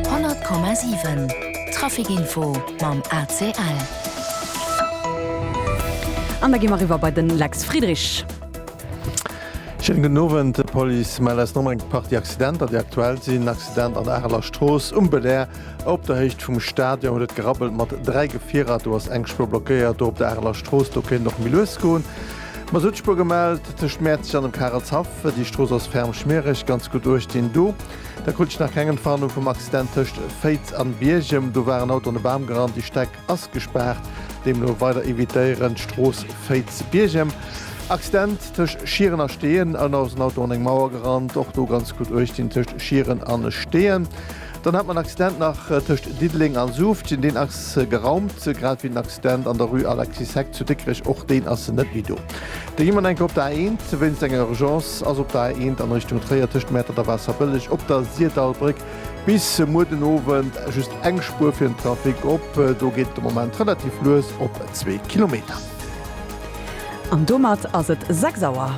100,7 Traficinfo mam ACL. An da gi mer eriwwer bei de Lex Friedrich. Schéinen gudden Owend. D'Police mellt aus Nommeng eng Partie Accidenter, déi aktuell sinn. Accident an der Areler Strooss, um Belair, op der Héicht vum Stadion huet et gerabbelt mat dräi Gefierer. Do ass eng Spuer blockéiert, do op der Areler Strooss. Do kéint et och méi lues goen. Mer sot Spuer gemellt tëscht Mäerzeg an dem Karelshaff. Déi Strooss ass ferm schmiereg, ganz gutt uecht deen do. Da krut ech nach keng Entwarnung vum Accident tëscht Féiz an Biergem. Do war en Auto an e Bam gerannt. Déi Steck ass gespaart, deemno weider evitéieren d'Strooss Féiz-Biergem. Accident tëscht Schieren a Steeën, an ass en Auto an eng Mauer gerannt. Och do ganz gutt uecht dinn tëscht Schieren an Steeën. Dann hat mer en Accident nach tëscht Diddeleng a Suuftgen. Deen ass geraumt, grad wéi den Accident an der Rue Alexis Heck zu Dikrech. Och deen ass net méi do. Da gi mer enke op der A 1 wéinst enger Urgence. Ass op der A 1 an Richtung Tréier tëscht Mäertert a Waasserbëlleg op der Sirdallbréck bis muer den Owend just eng Spuer fir den Trafic op. Do geet et de Moment relativ lues op zwee Kilometer. An domat ass et 6 Auer.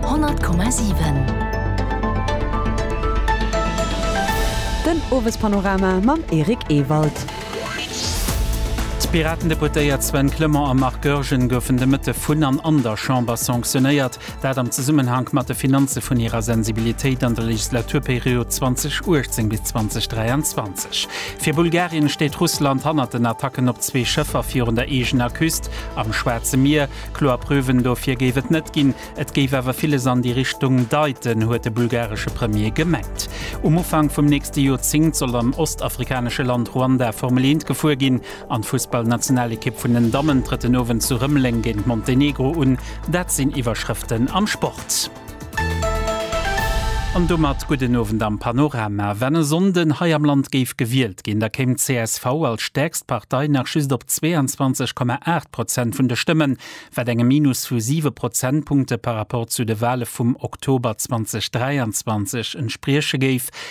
100,7 Den Owespanorama mam Eric Ewald. D'Piraten-Deputéiert Sven Clement a Marc Goergen goufen de Mëtte vun an an der Chamber sanctionéiert. Dat am Zesummenhank mat de Finanze vun hirer Sensibilitéit an der Legislaturperiod 2018 bis 2023. Fir Bulgarien steet Russland hannert den Attacken op zwee Schëffer virun der eegener Küst am Schwaarze Mier. Kloer Preuven dofir géif et net ginn, et géif awer villes an déi Richtung deiten, huet de bulgaresche Premier gemengt. Um Ufank vum nächste Joerzéngt soll am ostafrikanesche Land Ruanda Formel-Eent gefuer ginn. An d'Fussballnationalekipp vun den Dammen trëtt den Owend zu Rëmeleng géint Montenegro un. Dat sinn Iwwerschrëften am Sport. An domat gudden Owend am Panorama. Wann e Sonnden hei am Land géif gewielt ginn, da kéim csv als stäerkst Partei nach just op 22,8 Prozent vun de Stëmmen, wat engem Minus vu siwe Prozentpunkte par rapport zu de Wale vum Oktober 2023 entsprieche géif.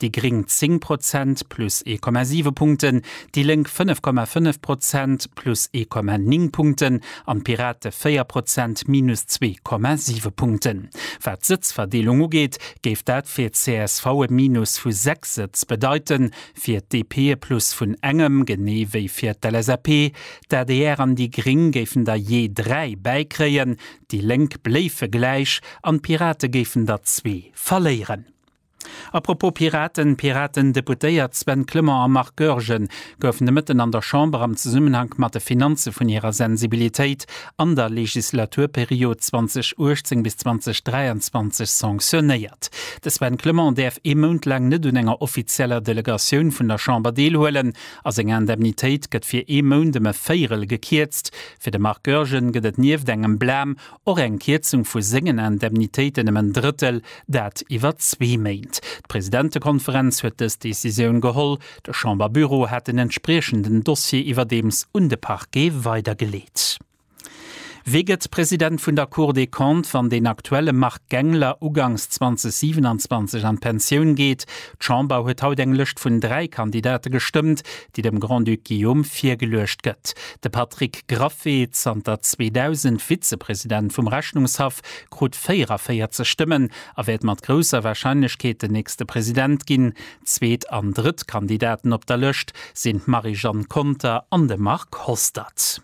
déi gréng 10 Prozent, plus 1,7 Punkten, déi Lénk 5,5 Prozent, plus 1,9 Punkten, an d'Pirate 4 Prozent, minus 2,7 Punkten. Wat d'Sëtzverdeelung ugeet, géif dat fir csv e Minus vu 6 Sëtz bedeiten, fir d'DP e Plus vun engem, genee wéi fir d'LSAP. D'adr an déi gréng géifen der jee 3 bäikréien, déi Lénk bléife gläich an d'Pirate géifen der zwee verléieren. A propos Piraten, D'Piraten-Deputéiert Sven Clement a Marc Goergen goufen de Mëtten an der Chamber am Zesummenhank mat de Finanze vun hirer Sensibilitéit an der Legislaturperiod 2018 bis 2023 sanctionéiert. De Sven Clement däerf ee Mount laang net un enger offizieller Delegatioun vun der Chamber deelhuelen a seng Indemnitéit gëtt fir ee Mount ëm e Véirel gekierzt. Fir de Marc Goergen gëtt et nieft engem Blam Och eng Kierzung vu sengen Indemnitéiten ëm en Drëttel, dat iwwer zwee Méint. D'Presidentekonferenz huet dës Decisioun geholl. De Chamberbüro hat den entspriechenden Dossier iwwerdeems un de Parquet weidergeleet. Wie gëtt President vun der Cour des Comptes, wann den aktuelle Marc Gangler ugangs 2027 an d'Pensioun geet? D'Chamber huet haut eng Lëscht vun dräi Kandidate gestëmmt, déi dem Grand-Duc Guillaume virgeluecht gëtt. De Patrick Graffé, zanter 2000 Vizepresident vum Rechnungshaff, krut 44 Stëmmen a wäert mat grousser Warscheinlechkeet den nächste President ginn. Zweet an drëtt Kandidaten op der Lëscht sinn d'Marie-Jeanne Conter an de Marc Hostert.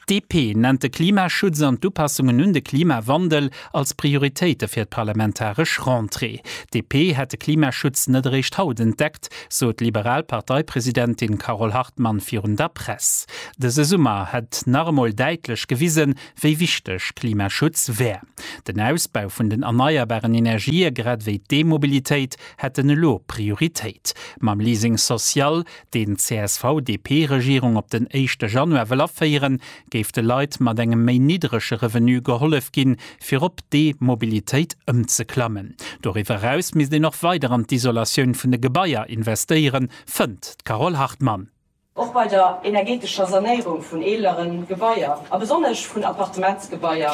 D'DP nennt de Klimaschutz an d'Upassungen un de Klimawandel als Prioritéite fir d'parlamentaresch Rentrée. D'DP hätt de Klimaschutz net eréischt haut entdeckt, sot d'liberal Parteipresidentin Carole Hartmann virun der Press. Dëse Summer hätt nach emol däitlech gewisen, wéi wichteg Klimaschutz wär. Den Ausbau vun den erneierbaren Energië grad ewéi d'E-Mobilitéit hätten elo Prioritéit. Mam Leasing social deen d'CSV-DP-Regierung op den éischte Januar wëll aféieren, géif de Leit mat engem méi niddrege Revenu gehollef ginn, fir op d'E-Mobilitéit ëmzeklammen. Doriwwer eraus misst een och weider an d'Isolatioun vun de Gebaier investéieren, fënnt d'Carole Hartmann. Och bei der energeetescher Sanéierung vun eelere Gebaier, a besonnesch vun Appartementsgebaier,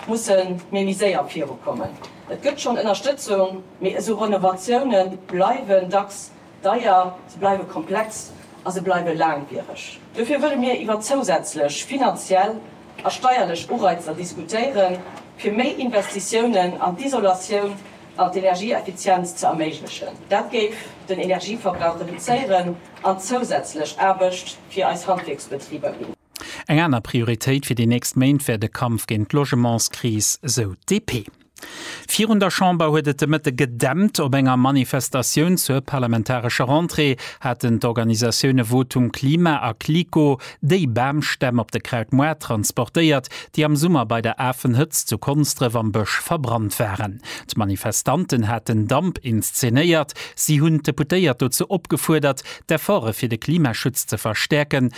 musse mir méi séier virukommen. Et gëtt schonn Ënnerstëtzung, mee esou Renovatioune bleiwen dacks Deier, se bleiwe komplex a se bleiwe laangwiereg. Dofir wëlle mir iwwer zousätzlech finanziell a steierlech Ureizer diskutéiere fir méi Investitiounen an d'Isolatioun an d'Energieeffizienz ze erméiglechen. Dat géif den Energieverbrauch reduzéieren an zousätzlech Aarbecht fir eis Handwierksbetriber ginn. Eng aner Prioritéit fir déi nächst Méint wär de Kampf géint d'Logementskris, sou d'DP. Virun der Chamber huet et de Mëtte gedämpt. Op enger Manifestatioun zur parlamentarescher Rentrée haten d'Organisatioune Votum Klima a Clico déi Bamstämm op de Krautmoart transportéiert, déi am Summer bei der Afenhëtzt zu Konsdref am Bësch verbrannt waren. D'Manifestanten haten Damp inszenéiert. Si hunn d'Deputéiert dozou opgefuerdert, d'Efforte fir de Klimaschutz ze verstäerken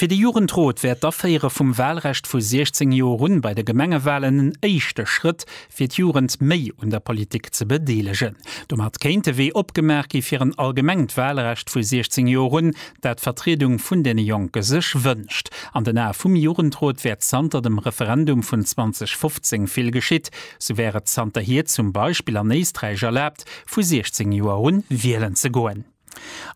Fir de Jugendrot wär d'Aféiere vum Walrecht vu 16 Joer un bei de Gemengewalen en éischte Schrëtt, fir d'Jugend méi un der Politik ze bedeelegen. Domat kéint de Wee opgemaach gi fir en allgemengt Walrecht vu 16 Joer un, dat d'Vertriedung vun deene Jonke sech wënscht. An den Ae vum Jugendrot wär zanter dem Referendum vun 2015 vill geschitt. Sou wär et zanterhier zum Beispill an Éisträich erlaabt, vu 16 Joer un wielen ze goen.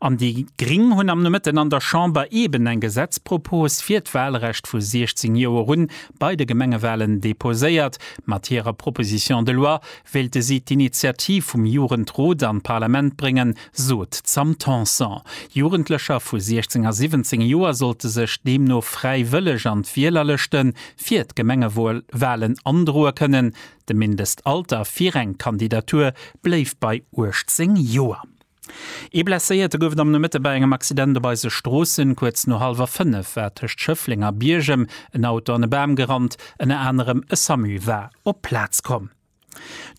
An déi gring hunn am Nomëtten an der Chamber eben eng Gesetzpropos fir d'Walrecht vu 16 Joer un bei de Gemengewalen deposéiert. Mat hirer Proposition de loi wéilte si d'Initiativ vum Jugendrot an d'Parlament bréngen, sot d'Sam Tanson. Jugendlecher vu 16 a 17 Joer sollte sech deemno fräiwëlleg an d'Wielerlëschte fir d'Gemengewalen androe kënnen. De Mindestalter fir eng Kandidatur bléift bei 18 Joer. Ee Blesséierte gouf et am Nomëtte bei engem Accident op eise Stroossen. Kuerz no hallwer 5 war tëscht Schëffleng a Biergem en Auto an e Bam gerannt. Ënner anerem e Samu war op d'Plaz komm.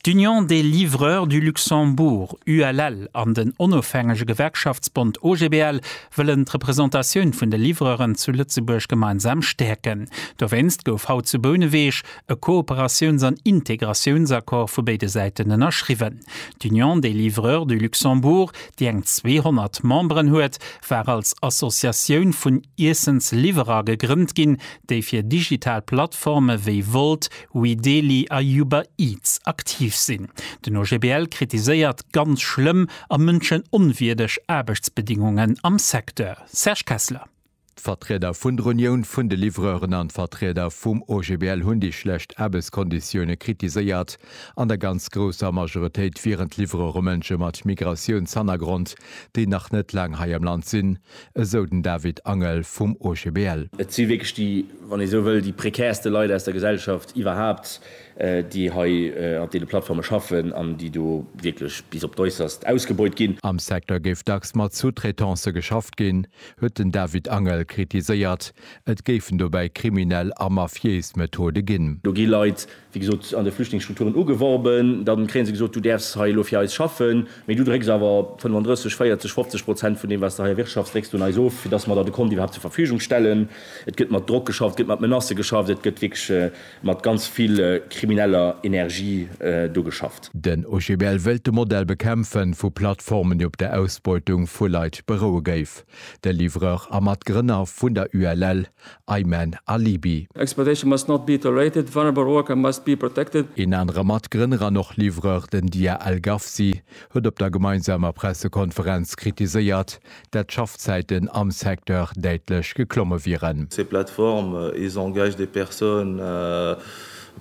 D'Union des Livreurs du Luxembourg, ULL, an den onofhängege Gewerkschaftsbond OGBL wëllen d'Representatioun vun de Livreuren zu Lëtzebuerg gemeinsam stäerken. Dowéinst gouf haut zu Bouneweg e Kooperatiouns an Integratiounsaccord vu béide Säiten ënnerschriwwen. D'Union des livreurs du Luxembourg, déi eng 200 Memberen huet, war als Associatioun vun Iessensliwwerer gegrënnt ginn, déi fir digital Plattforme wéi Wolt, Weedeli a Uber Eats aktiv sinn. Den OGBL kritiséiert ganz schlëmm a mënschenonwierdeg Aarbechtsbedingungen am Secteur. Serge Kessler. D'Vertrieder vun der Unioun vun de Livreuren an d'Vertrieder vum OGBL hunn déi schlecht Aarbechtskonditioune kritiséiert. An der ganz grousser Majoritéit wieren d'Livreure Mënsche mat Migratiounshannergrond, déi nach net laang hei am Land sinn, esou den David Angel vum OGBL. Et si wierklech déi, wann ee sou wëll, déi prekärste Leit aus der Gesellschaft iwwerhaapt, déi hei op deene Plattforme schaffen an déi do wierklech bis op d'Äusserst ausgebeut ginn. Am Secteur géif dacks mat Sous-traitancë geschafft ginn, huet den David Angel kritiséiert, et géifen dobäi kriminell a mafiéis Methode ginn. Do gi Leit, wéi gesot, an de Flüchtlingsstrukturen ugeworben, da kréie se gesot, du däerfs hei elo fir eis schaffen, mee du drécks awer 35, 40, 50 Prozent vun deem, wat s de hei erwirtschafts, drécks du un eis of, fir datt mer der de Kont iwwerhaapt zur Verfügung stellen. Et gëtt mat Drock geschafft, et gëtt mat Menacë geschafft, et gëtt wierklech. Mat ganz vill krimineller Energie do geschafft. Den OGBL wëllt de Modell bekämpfen, vu Plattformen, déi op der Ausbeutung vu Leit beroue géif. De Livreur a Matgrënner vun der ULL, Ayman Alibi. Exploitation must not be tolerated, vulnerable worker must be protected. Een anere Matgrënner an och Livreur, den Dia Al Gafsi, huet op der gemeinsamer Pressekonferenz kritiséiert, dat d'Schaffzäiten am Secteur däitlech geklomme wieren. Ces plateformes, ils engagent des personnes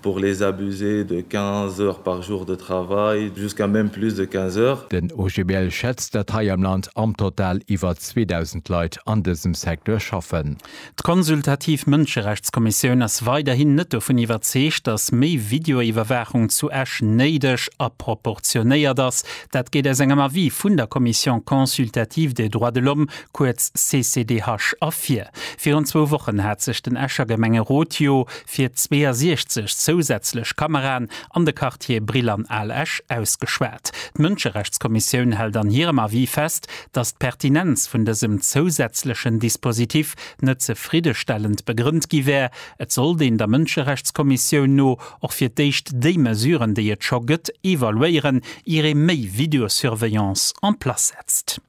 pour les abuser de 15 heures par jour de travail, jusqu'à même plus de 15 heures. Den OGBL schätzt, datt hei am Land am Total iwwer 2.000 Leit an dësem Secteur schaffen. D'Konsultativ Mënscherechtskommissioun ass weiderhin net dovun iwwerzeegt, datt méi Videoiwwerwaachung zu Esch néideg a proportionéiert ass. Dat geet aus engem Avis vun der Commission consultative des droits de l'homme, kuerz CCDH, ervir. Virun zwou Wochen hat sech den Escher Gemengerot jo fir 62 zousätzlech Kameraen an de Quartiere Brill an Al Esch ausgeschwat. D'Mënscherechtskommissioun hält an hirem Avis fest, datt d'Pertinenz vun dësem zousätzlechen Dispositif net zefriddestellend begrënnt gi wär. Et sollt een der Mënscherechtskommissioun no och fir d'éischt déi Mesuren, déi et scho gëtt, evaluéieren, ier ee méi Videosurveillance en place setzt.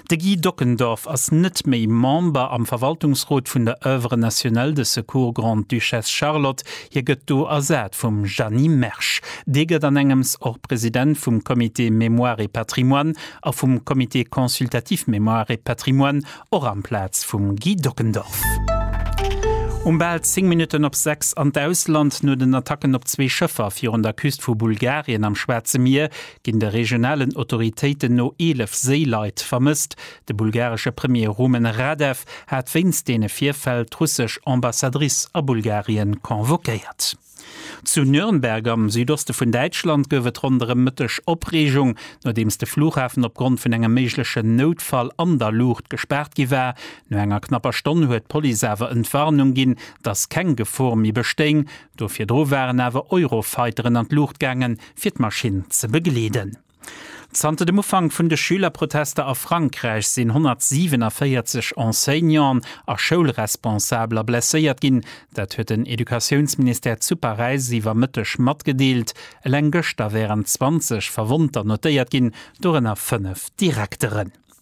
De Guy Dockendorf ass net méi Member am Verwaltungsrot vun der Oeuvre nationale de secours Grande-Duchesse Charlotte. Hie gëtt do ersat vum Jeanny Mersch. Dee gëtt an engems och President vum Comité Mémoire et Patrimoine. a vum Comité consultatif Mémoire et Patrimoine, och amplaz vum Guy Dockendorf. Um bal 10 Minutten op 6 an d'Ausland. No den Attacken op zwee Schëffer virun der Küst vu Bulgarien am Schwaarze Mier ginn de regionalen Autoritéiten no 11 Séileit vermësst. De bulgaresche Premier Rumen Radev hat wéinst deene Virfäll d'russesch Ambassadrice a Bulgarien convoquéiert. Zu Nürnberg am Südoste vun Däitschland gouf et ronderëm Mëtteg Opreegung, nodeems de Flughafen opgrond vun engem méiglechen Noutfall an der Luucht gespaart gi war. No enger knapper Stonn huet d'Police awer Entwarnung ginn, dass keng Gefor méi bestéing. Do virdru waren awer Eurofighteren an d'Luucht gaangen, fir d'Maschinn ze begleeden. Zanter dem Ufank vun de Schülerprotester a Frankräich sinn 147 Enseignanten a Schoulresponsabler blesséiert ginn. Dat huet den Educatiounsministère zu Paräis iwwer Mëtteg matgedeelt. Eleng gëschter wären 20 Verwonnter notéiert ginn, dorënner fënnef Direkteren.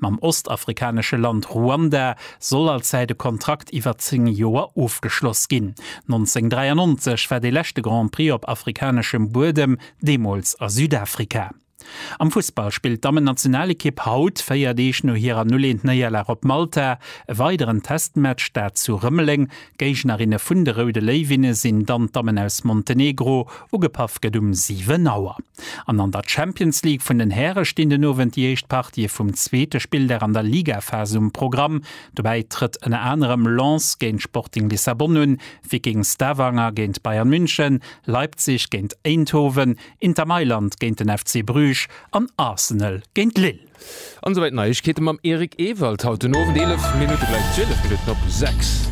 Mam ostafrikanesche Land Ruanda soll als Säit e Kontrakt iwwer 10 Joer ofgeschloss ginn. 1993 war dee leschte Grand Prix op afrikaneschem Buedem, deemools a Südafrika. Am Fussball spillt d'Dammennationalekipp haut, 4 Deeg no hirer 0-1 Néierlag op Malta, e weideren Testmatch, dat zu Rëmeleng D'Géignerinne vun de Roude Léiwinne sinn dann d'Dammen aus Montenegro. Ugepaff gëtt um 7 Auer. An an der Champions League vun den Häre stinn den Owend déi éischt Partië vum zweete Spilldag an der Ligaphas um Programm. Dobäi trëtt ënner anerem Lens géint Sporting Lissabon un, Viking Stavanger géint Bayern München, Leipzig géint Eindhoven, Inter Mailand géint den FC Bruges an Arsenal géint Lille. An esou weit Neiegkeeten mam Eric Ewald haut den Owend 11 Minutten gleich 12 Minutten op 6.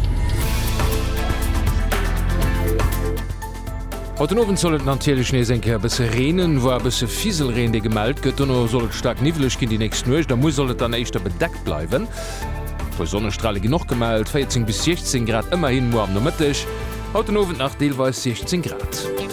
Haut den Owend soll et natierlech nees eng Kéier e bësse reenen, woar e bësse Fiselreen dee gemellt gëtt. Dono soll et staark niwweleg ginn déi nächst Nuecht a muer soll et dann éischter bedeckt bleiwen. E puer Sonnestrale ginn och gemellt, 14 bis 16 Grad ëmmerhin muer am Nomëtteg. Haut den Owend nach deelweis 16 Grad.